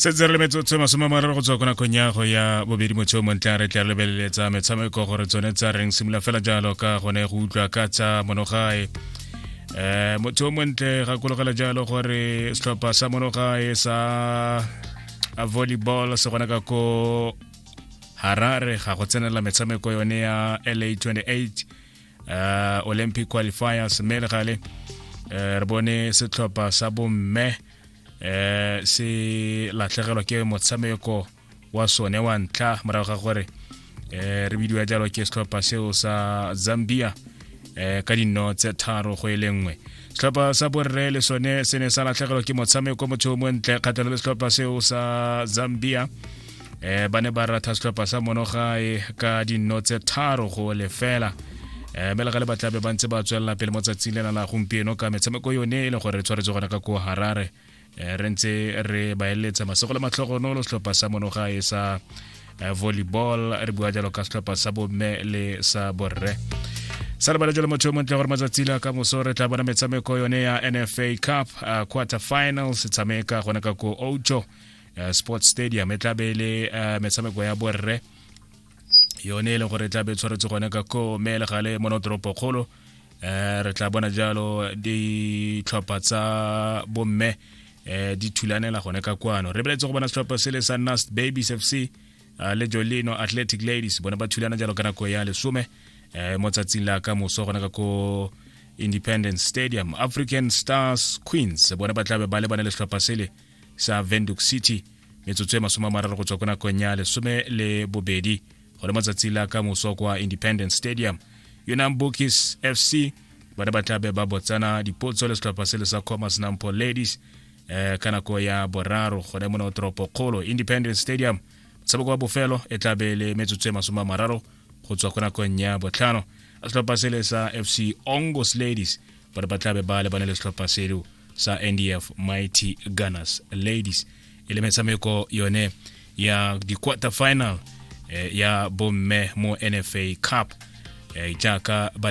setse re le metsotso masome mararo go tswa ko nakong ya go ya bobedi motsheo montle re tla lebeleletsa metshameko gore tsone tsa reng simolola fela jalo ka gone go utlwa ka tsa monogae um eh, motho o montle gakologela jalo gore setlhopha sa monogae sa volleyball se gona ka ko harare ga go tsenela metshameko yone ya la 28 uh, olympic qualifiers mme re gale uh, re bone setlhopha sa bomme uh, se latlhegelwa ke motshameko wa sone wa ntlha morago ga gore uh, re bidiwa jalo ke setlhopha seo sa zambia uh, ka dinno tse tharo go e le nngwe setlhopha sa borre le sone se ne sa latlhegelwa ke motshameko motho o montle kgatlhelo le setlhopha seo sa zambia eh ba ne ba ratha setlhopha sa monogae ka dinno tse tharo go lefela eh mme le gale ba tlabe ba ntse ba tswelela pele mo tsatsing lena la gompieno ka metshameko yone e le gore re tshwaretse gona ka ko harare eh, re ntse re ba eletsa masego le matlhogonolo setlhopha sa monogae sa eh, volleyball re bua jalo ka setlhopha sa bomme le sa borre sa lebale jalo motho yo montle gore matsatsi la ka moso re tla bona metshameko yone ya nfa cup uh, quarter finals tshameka gona ka ko ojo uh, sports stadium e tlabe e le uh, metshameko ya borre yone e leng gore e tlabe e tshwaretse gone ka ko meelegale mo notoropo kgolo um re tla bona jalo ditlhopha tsa bomme um di thulanela gone ka kwano re beletse go bona setlhopha se le sa nast babies f c uh, le jolino athletic ladies bone ba thulana jalo ka nako ya lesome um mo tsatsing la ka moso gone ka ko independence stadium african stars queens bone ba tlabe ba lebane le setlhopha sele sa venduc city metsotso e masome a mararo go tswa ko nakong ya lesome le bobedi go le matsatsi la ka moso kwa independence stadium yona bokis fc bana ba tla be ba botsana dipotso le setlhopha se le sa commerce nampo ladies eh, ka nako ya boraro gone mona toropo kgolo independence stadium motshameko wa bofelo e tla be le metsotso e masome a mararo go tswa ko nakong ya botlhano setlhopha se le sa fc ongos ladies but ba tla be ba lebane le setlhopha seo sa ndf mighty gunners ladies e le metshameko yone ya di-quarter final eh, ya bomme mo nfa cup eh, jaaka ba